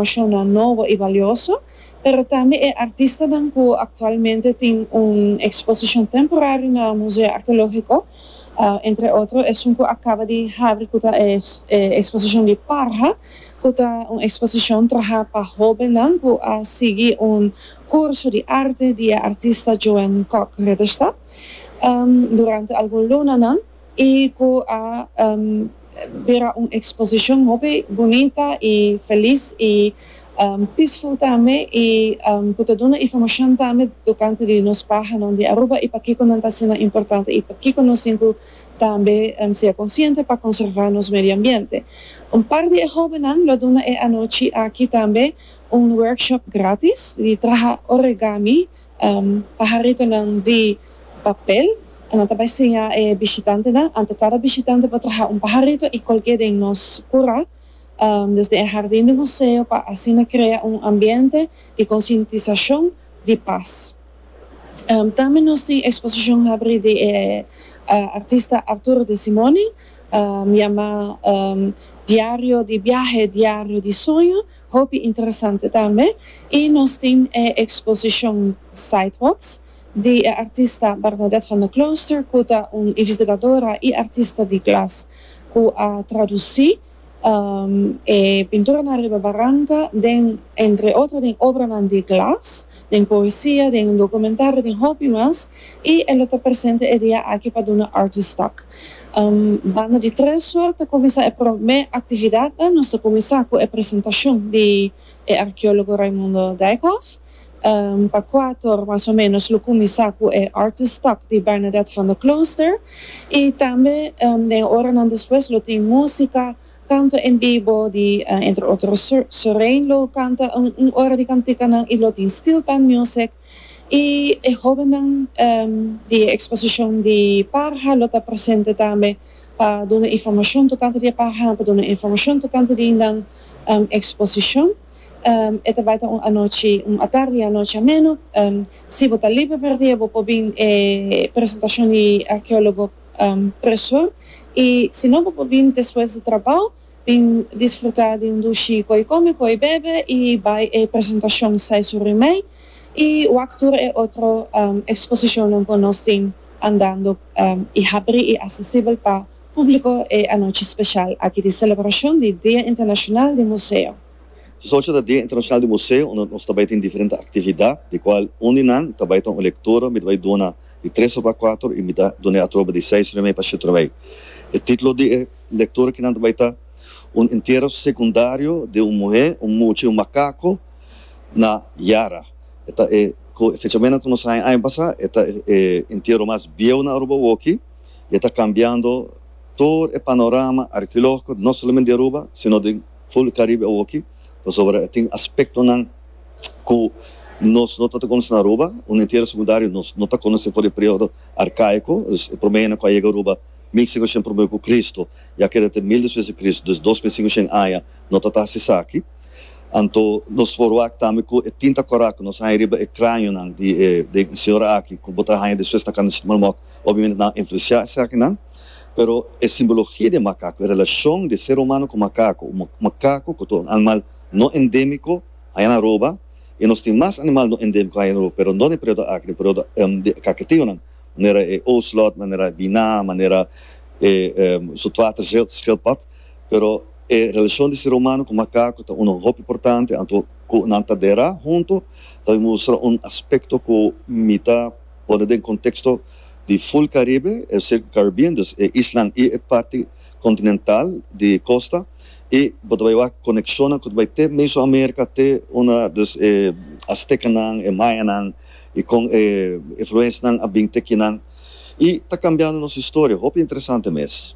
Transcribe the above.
Shona nobo i balioso, pero tambe e artistanan ku aktualmente tin un eksposishon temporario na Museo Arkeológiko, entre otro esun ku a kaba di habri ku ta e eksposishon di Parha, ku ta un eksposishon trahá pa hóbennan ku a sigui un kurso di arte di e artista Joan Kok Ritterstadt durante algun lunanan. y cu a bira un exposicion hopi bunita y feliz y peaceful tambe y cu ta duna informacion tambe tocante di nos pahanan di Aruba y pakico nan ta asina importante y pakico nos tin cu tambe sea consciente pa conserva nos medio ambiente. Un par di e hobennan lo duna e anochi aki tambe un workshop gratis di traha origami. Paharitonan di papel. Nan ta bai siña e bishitantenan anto kada bishitante por traha un paharito i kolk'é den nos kura, desde e hardin di museo pa asina krea un ambiente di konsientisashon di pas. Tambe nos tin eksposishon habri di e artista Arturo de Simone yamá Diario di biahe, Diario di soño. Hopi interesante tambe y nos tin e exposicion Sidewalks di e artista Bernadette van der Klooster cu ta un investigadora y artista di glas cu a traduci e pinturanan riba baranca den entre otro den obranan di glas den poesia, den dokumentario, den hopi mas, i e lo ta presente e dia aki pa duna Artistak. Banda di tres or ta kuminsá e promé aktividatnan, nos ta kuminsá ku e presentashon di e arkeólogo Raimundo Dijkhof, pa kuatu or mas o ménos lo kuminsá ku e Artistak di Bernadette van der Klooster, i tambe den e oranan despues lo tin músika, Canta en bibo di entre otro Sorein lo canta un ora di canticanan y lo tin steel band music y e hobennan di e exposicion di parha lo ta presente tambe pa duna informacion tocante di e parhanan pa duna informacion tocante di nan exposicion e ta bay ta un anochi un atardi y anochi ameno si bo ta liber per dia bo por bin e presentacion di archeologo preshon y si no bo por bini despues di trabao bin disfruta di un dushi cu ey come cu ey bebe y bay e presentacion sai su rimey y wak tur e otro exposicionnan cu nos tin andando y habri y accesibel pa publico e anochi special aki di celebracion di Dia Internacional di Museo. Su ocho ta Dia Internashonal di Museo unda nos ta bai tin diferente aktividat di kual un di nan ta bai ta un lektura mi ta bai duna di tres oba kuater y mi ta dun'e atroba di seis orimei pa shete orimei. E titulo di e lektura ki nan ta bai ta Un Entierro Secundario de un Muhé, un Mucha y un Makako na Yara. E ta e ku e fechamen ku nos haña aña pasá e ta e entierro mas bieu na Aruba woki y e ta kambiando tur e panorama arkeológiko no solamente di Aruba sino den Full Caribe awoki pasobra e tin aspectonan cu nos no tabata conoce na Aruba, un entierro secundario nos no ta conoce for di e periodo arcaico, dus e prome hende cu a yega Aruba mil cinco shen prome cu Cristo y a keda te mil despues di Cristo, dus dos mil cinco shen aña no ta ta haci esaki. Anto nos forwak tambe cu e tin ta coraco, nos haña riba e cranionan di e señora aki cu bo ta haña despues na Cana Chicmalmot Obviamente nan a influenciá esakinan, pero e simbologia di e makaku, e relacion di e ser humano cu makaku, un makaku cu ta un animal no endemico, haña na Aruba, y nos tin mas animal no endemico haña na Aruba, pero no den e periodo aki, den e periodo di kakatiunan, manera e ocelot, manera e biná, manera e zoetwaterschildpad, pero e relacion di ser humano cu makaku ta uno hopi importante, anto cu nan ta dera hunto ta mustra un aspecto cu mi ta. Pone den konteksto di Full Caribe, e Circle Caribbean, dus e islan i e parti kontinental di kosta, i bo ta bai wak konekshonnan ku ta bai te Mesoamerika, te una, dus e Aztekanan, e Mayanan, i kon e influensnan a bin te kinan, i ta kambiando nos historia. Hopi interesante mes.